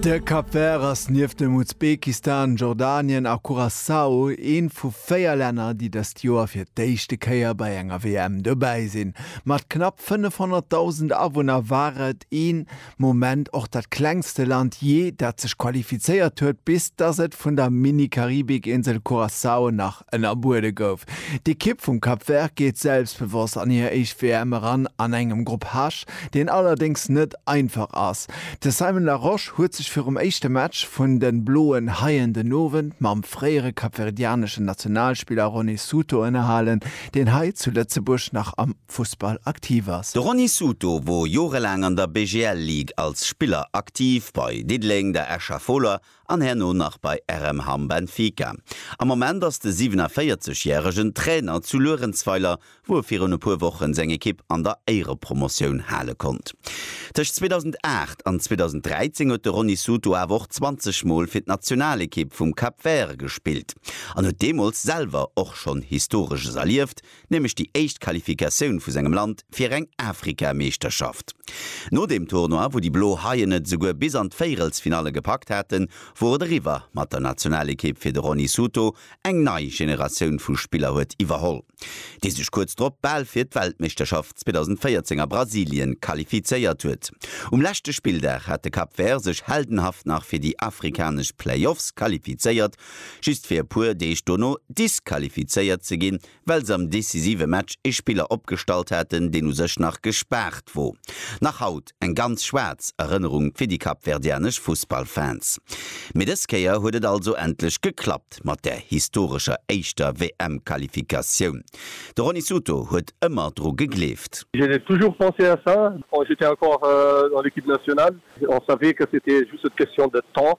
De Cap Vert ass nieft dem Usbekistan, Jordanien a Curaçao ee vu véier Länner, déi dëst Joer fir d'éischte Kéier bei enger WM dobäi sinn. Mat knapp 500.000 Awunner war et ee Moment och dat klengste Land jee, dat sech qualifizéiert huet, bis datt et vun der Mini-Karibikinsel Curaçao nach ënnerbuede gouf. D'Ekipp vum Cap Vert geet selbstbewosst an hir éischt WM eran an engem Grupp H, deen allerdéngs net einfach ass. De Simon Larosche huet sech virum éischte Match vun de Bloen Haien den Owend mam fréiere kapverdianeschen Nationalspiller Rony Souto ënnerhalen, deen hei zu Lëtzebuerg nach am Fussball aktiv ass. De Rony Souto wor jorelaang an der BGL Ligue als Spiller aktiv, bei Diddeleng, der Escher Fola an herno nach bei RM Hamm Benfica. Am Moment ass de 47 järegen Trainer zu Luerenzweiler, wou e virun e puer Wochen seng Ekipp an der Éierepromotioun hale konnt. Tëscht 2008 an 2013 huet de Rony Souto awer och 20 mol fir d'Nationalekipp vum Cap Vert gespillt an huet deemools selwer och schonn Historesches erlieft, nämlech déi éischt Qualifikatioun vu sengem Land fir eng Afrika-Meeschterschaft. No deem Tournoi, wou déi Blo Haien et esouguer bis an d'Véierelsfinalle gepackt haten, wor et eriwwer mat der Nationalekipp fir de Rony Souto eng nei Generatioun vu Spiller huet iwwerholl, déi sech kuerz drop bal fir d'Weltmeeschterschaft 2014 a Brasilien qualifizéiert huet. Um leschte Spilldag hat de Cap Vert sech heldenhaft nach fir déi afrikanesch Playoffs qualifizéiert just fir e puer Deeg dono disqualifizéiert ze ginn, well se am decisive Match ee Spiller opgestallt haten, deen u sech nach gespaart wor. Nach haut eng ganz schwaarz Erënnerung fir déi kapverdianesch Fussballfans. Mee dës Kéier huet et also endlech geklappt mat der historescher éischter WM-Qualifikatioun. De Rony Souto huet ëmmer dru gegleeft. J'ai toujours pensé à ça quand j'étais encore dans l'équipe nationale. On savait que c'était juste une question de temps.